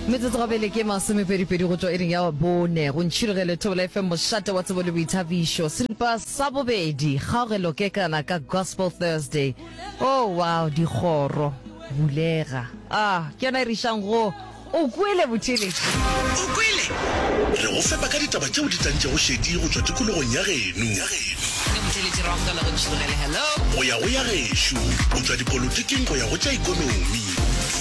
metsotso gabele ke masomepedipedi go tšwa e reng ya bone go ntšhirogelo e thobela fm mošate wa tsebo le boithabišo seripa sa bobedi kgaogelo ke kana ka gospel thursday oh wow dikgoro bulega a ah, ke yona e re išang go o kwele bothele o kwele re go fepa ka ditaba tšeo di tantšego šedi go tšwa tikologong ya geno go ya go ya gešo go tšwa dipolotiking go ya go tša ikonomi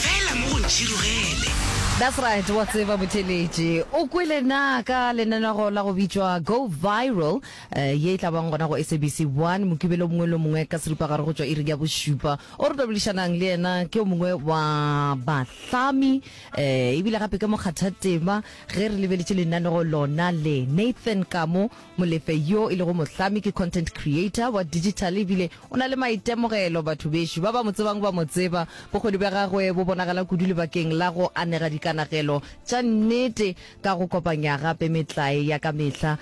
Fela mo go ntšhirugele. That's right, wa tseba Buthelezi. O kwele na ka lenanego la go bitšwa Go Viral eh, ye e tla bang gona go SABC 1 Mokibelo o mongwe le o mongwe ka seripagare go tšwa iring ya bošupa. O re boledišanang le yena ke o mongwe wa bahlami eh, ebile gape ke mokgathatema ge re lebeletše lenanego lona le, Nathan Kamo Molefe yo e lego mohlami ke content creator wa digital ebile o na le maitemogelo. Batho bešo ba ba mo tsebang ba mo tseba. Bokgoni bja gagwe bo bonagala kudu lebakeng la go anega dikanagelo tša nnete ka go kopanya gape metlae ya ka mehla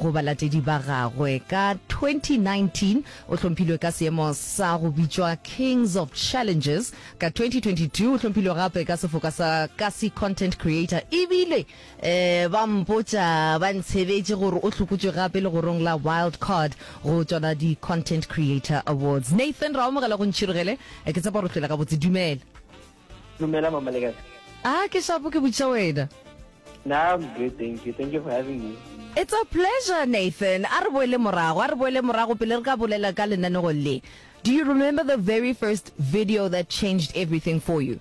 go balatedi ba gagwe. Ka 2019 o hlomphilwe ka seemo sa go bitšwa Kings of Challenges. Ka 2022 o hlomphilwe gape ka sefoka sa Kasi Content Creator ebile Ba mpotša ba ntshebetše gore o hlokotšwe gape legorong la Wild Card go tšona di-Content Creator Awards. Nathan, Ra amogela go ntšhirogele. Ke tshepa gore o hloile gabotse. Dumela. Dumela mama, le kae? Ah, ke shapo ke botšiša wena. Nna I'm good, thank you. Thank you for having me. It's a pleasure, Nathan. A re boele morago, a re boele morago pele re ka bolela ka lenanego le. Do you remember the very first video that changed everything for you?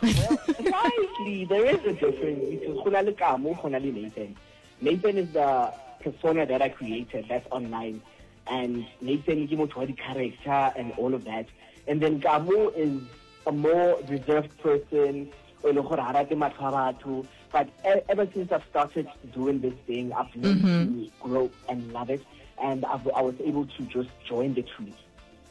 slightly there is a difference because go na le kamo go na le nathan nathan is the persona that i created that's online and nathan ke motho wa di-character and all of that and then kamo is a more reserved person o le gore ga rate matlho a batho but e-, ever since i've started doing this thing i've learned mm -hmm. to grow and love it and I've, i was able to just join the truth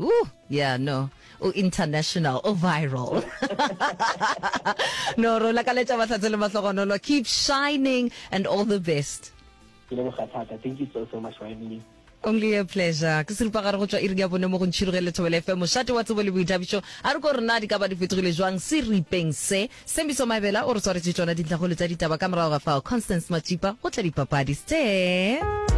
Ooh, yeah, no. O international, o viral. no, ro lakaletša mahlatse le mahlogonolo. Keep shining and all the best. Thank you so, so much for having me. Only a pleasure. Ke serupa gare go tswa iring ya bone mo go ntšhiroge le thobele FM. Mošate wa tsebo le boithabišo. A re ko re na di ka ba di fetogile jwang se ripeng se. Sembiso Mabela o re tshwaretse tsona dintlhagolo tsa ditaba ka morago ga fao. Constance Matsipa go tla dipapadi. Ste.